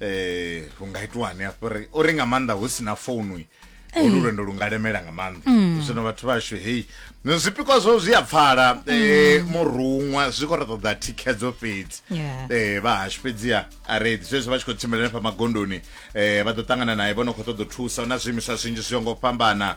eh hu nga itiwani hafho ri uri nga maanḓa hu si na founu olu lwendo lu nga lemela nga maanḓa mm. zwino vhathu vhashu hei zwipikwa zwo zwi a pfala mm. eh, muruṅwa zwi khou ri ṱoḓa thikhedzo fhedzi eh, vha hashu fhedziha a redi zwezwo vha tshi khou tshimbila nefha magondoni eh, vha ḓo ṱangana naye vho no khou ṱoḓa u thusa na zwiimiswa zwinzhi zwi yo ngo fhambana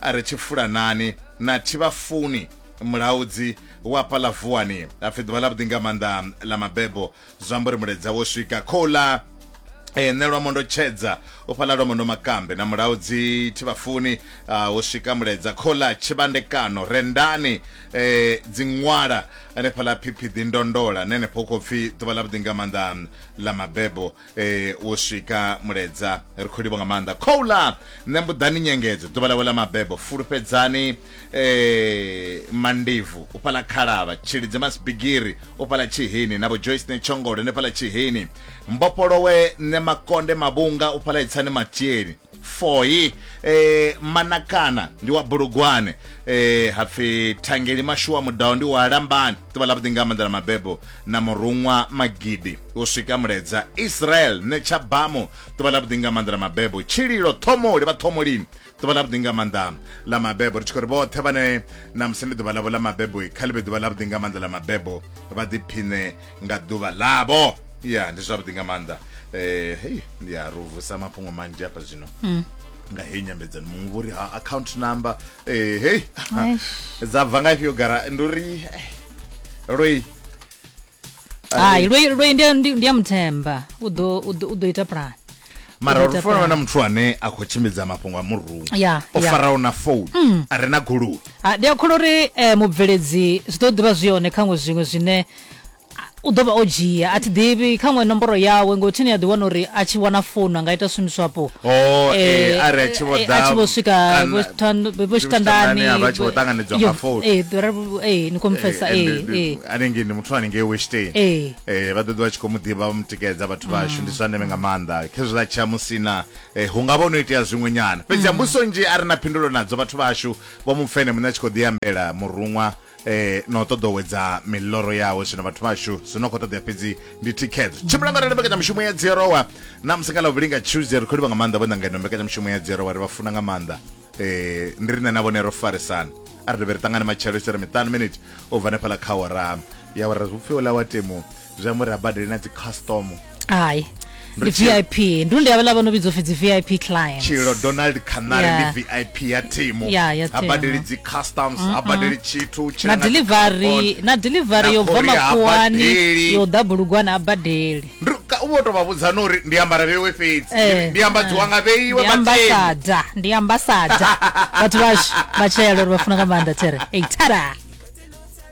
A ri tshi fulanani na Tshivhafuni, mulaudzi wa hafhaḽa vuwani, ha pfi ḓuvha ḽavhuḓi nga maanḓa ḽa mabebo, zwi amba uri muledza wo swika. Khouḽa ee, nṋe Lwamondo Tshedza u fhaḽa Lwamondo Makambe na mulaudzi Tshivhafuni, a ho swika muledza. Khouḽa tshivhandekano, rendani ee, dziṅwala hanefhaḽa Phiphiḓi, ndondola ni henefho hu khou pfi ḓuvha ḽavhuḓi nga maanḓa ḽa mabebo. Eh, wo swika muledza ri khou livha nga maanḓa khoula nṋe mbuḓani nyengedzo ḓuvha ḽawe ḽa mabebo fulufhedzani eh, mandivu u fhala khalavha tshilidzi masibigiri u fhala tshihini na vhojoyce ne tshongolo ne fhala tshihini mbofholowe nṋe makonde mavhunga u fhala itsani matieni foi eh, manakana ndi wa bulugwane eh, hapfi thangeli mashuwa mudao ndi wa lambani ḓuvha ḽavhuḓi nga maanḓa ḽa mabebo na muruṅwa magidi u swika muledza israel netsha bamu ḓuvha ḽavhuḓi nga maanḓa ḽa mabebo tshililo thomoli vha thomolini ḓuvha ḽavhuḓi nga maanḓa ḽa mabebo ri tshi khou ri vhoṱhe vhane na musi ndi ḓuvha ḽavho ḽa mabebo kha ḽi vhe ḓuvha ḽavhuḓi nga maanḓa ḽa mabebo vha ḓiphiṋe nga ḓuvha ḽavho ya ndi zwavhuḓi nga maanḓa eh hey ya ro vusa mafhungo manzhi hafha zwino mm. nga heyi nyambedzano muṅwe vhori ha account number eh hey dza bva nga ifhio gara ndi uri eh, loi hai loi loi ndi ya muthemba u ḓo u ḓo ita plan mara uri fona na muthu ane a khou tshimbidza mafhungo a murungu o faraho na founu mm. a re na goloi ndi a kholo uri eh, mubveledzi zwi ḓo ḓivha zwi hone khaṅwe zwiṅwe zwine u ḓo vha o dzhia a thi ḓivhi kha ṅwe nomboro yawe ngo thini a ḓi wana uri a tshi wana founu a nga ita swim swapo oh, eh, eh, are a tshi vho eh, ḓa a tshi vho swika vho tshitandani a vha tshi vho ṱanganedzwa nga founu eh dora eh ni khou mfesa eh eh hanengei ndi muthu hanengei westein eh eh vha ḓoḓi vha tshi khou mu ḓivha vha mu tikedza vhathu mm. vhashu ndi zwa ndeme nga maanḓa khezwiḽa tsha musina hu nga vha no itea zwiṅwe nyana fhedzi mm. mbuso nzhi a ri na phindulo nadzo vhathu vhashu vho mupfene muṋe a tshi khou ḓi ambela muruṅwa na u ṱoḓowedza miḽoro yawe zwino vhathu vhashu zwi no khou ṱoḓea fhedzi ndi thikhedzo tshimbila nga rali mbekanyamushumo ya dzierowa na musi nga ḽavhuvhili nga tuesday ri khou livha nga maanḓa vhona ngeno mbekanyamushumo ya dzierowa ri vha funa nga maanḓa um ndi rine na vhone ro farisana a ri dovhe ri ṱangane matshelo isere miṱanu miniti u bva hanefhaḽa kha ora ya ora upfhi ola wa temu zwi amba uri a badele na dzi custom hai ndi vip ndi ndi avhala vha no vhidzwa upfi dzi vip clients tshilo donald canary yeah. ndi vip ya thimu yeah, ya ha badeli dzi customs mm -mm. ha badeli tshithu na delivery na delivery yo bva makuwani yo ḓa bulugwana ha badeli u vho tou vha vhudza no uri ndi ambara vheiwe fhedzi eh, ndi ambadziwa eh. nga vheiwe ambasada ndi ambasada vhathu vhashu vhatshela uri vha funa nga maanḓa there ei tada